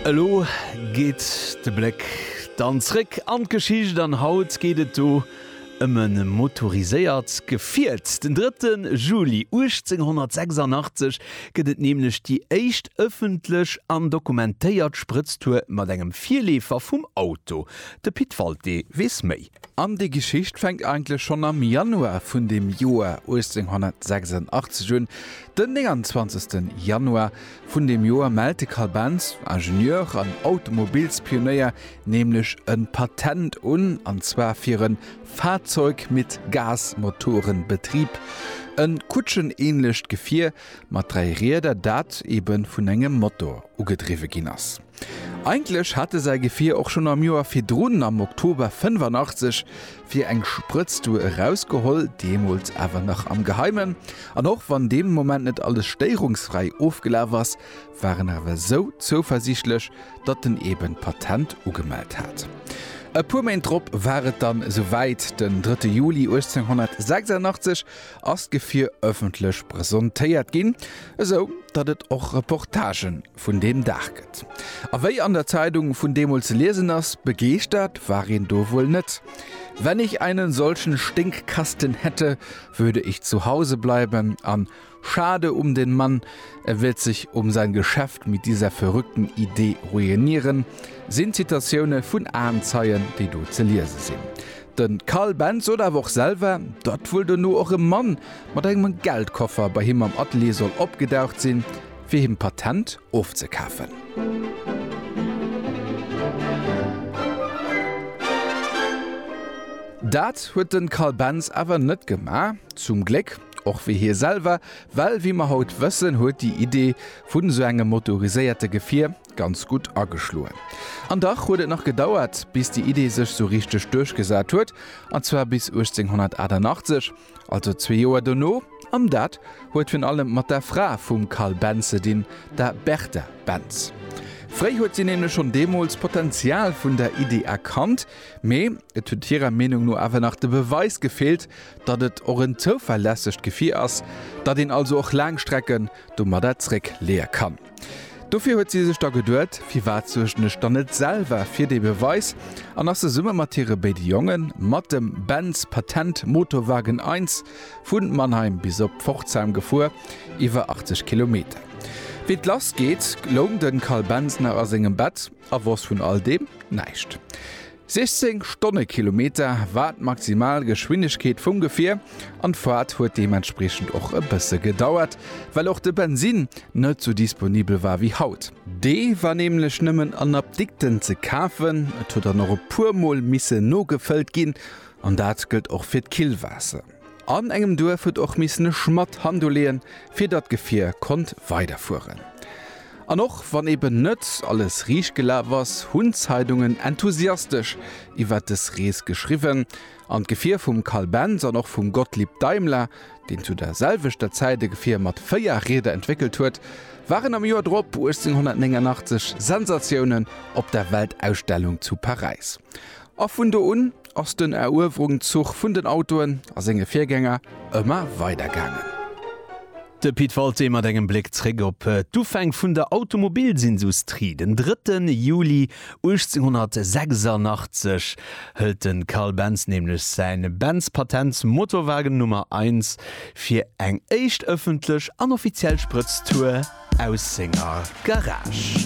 Elo geet de Bléck dann zréck an d'Geschicht an haut geet et do ëm e motoriséiert Gefiert. Den 3 Juli 1886 gëtt et nämlech déi éischt ëffentlech an dokumentéiert Sprëtztour mat engem Virleefer vum Auto. De Pit Walté weess méi. An déi Geschicht fänkt eigentlech schonn am Januar vun dem Joer 1886 un. Den 29. Januar vun deem Joer mellt de Carl Benz, Ingenieur an Automobilspionéier, nämlech e Patent un, an zwar fir e Fahrzeug mit Gasmotorenbetrieb, e kutschenähnlecht Gefier mat dräi Rieder, dat eebe vun engem Motor ugedriwwe ginn ass. Eigentlech hat e säi Gefier och schonn am Joer virdrun, am Oktober 85, fir eng Sprëtztour erausgeholl, deemools awer nach am Geheimen. An och wann dee Moment net alles stéierungsfräi ofgelaf ass, war en awer esou zouversiichtlech, datt en eben d'Patent ugemellt hat. E puer Méint drop war et dann esou wäit, den 3 Juli 1886 ass d'Gefier ëffentlech presentéiert ginn, esou datt et och Reportagen vun deem Dag gëtt. A wéi an der Zeidung vun deemools ze liesen ass, begeeschtert war een do wuel net. Wenn ich einen solchen Stinkkasten hätte, würde ich zu Hause bleiben an Schade um den Mann, er wird sich um sein Geschäft mit dieser verrückten Idee ruinieren sinn Zitatioune vun Aenzeien, déi do ze liese sinn. De Karl Benz sot awer och selwer, datt wuel dono och e Mann mat engem Geldkoffer bei him am Atelier soll opgedaucht sinn, fir him d'Patent ofzekafen. Dat huet den Carl Benz awer net gemaach, zum Gléck, och wéi hie selwer, well wéi mer haut wëssen, huet déi Idee vun esou engem motoriséierte Gefier ganz gutt ageschloen. An dach huet et nach gedauert, bis déi Idee sech sou richteg duerchgesat huet, an zwar bis 1888, Also zwee Joer dono, an dat huet virun allem mat der Fra vum Carl Benz ze dinn, der Bertha Benz. Fréi huet si nämlech schonn deemools d'Potenzial vun der Iddi erkannt, mee et huet hirer Meenung no awer nach de Beweis gefeelt, datt et och en zouverlässegt Gefier ass, datt een also och laang Strecken domadder zréckleeë kann. Dofir huet si sech da geduet, Firwat suergen ech dann net selwer fir dee Beweis? an ass zesumme mat hire béide Jongen, mat dem Benz Patent Motowagen I, vu Mannheim bis op Pforzheim gefuer, iwwer 80 Kilometer. Wéi d'Lass geet, loung de Carl Benz nach a sengem Bett a wosst vun all deem näischt. 16 Stonnekilometer war d'maximal Geschwindegkeet vum Gefier an d'Faart huet deementspriechend och e bësse gedauert, well och de Bensin net sou disponibel war wéi haut. Dee war nämlech nëmmen an Apdikten ze kafen, et huet dann och e puer Mol misse nogefëllt ginn an dat gëllt och fir d'Killwaasser. An engem Duerf huet och missen e Schmadd Hand uleeën, fir datt d'Gefier konnt weiderfueren. An och wann eben net alles riicht gelaf ass, hunn d'Zeidungen enthusiastesch iwwer des Rees geschriwwen, an d'Gefier vum Carl Benz an och vum Gottlieb Daimler, deen zu der selwechter Zäit e Gefier mat véier Rieder entwéckelt huet, waren am Joer drop, 1889, Sensatiounen op der Weltausstellung zu Paräis. A vun do un ass den Eruewerungzuch vun den Autoen a senge Virgänger ëmmer weider gaangen. De Pit Walté mat engem Bléck zréck op d'Ufäng vun der Automobilsindustrie, Den drëtte Juli 1886 hëlt de Carl Benz nämlech säi Benz-Patent Motorwagen Nummer Eins fir eng éischt ëffentlech an offiziell Sprëtztour aus senger Garage.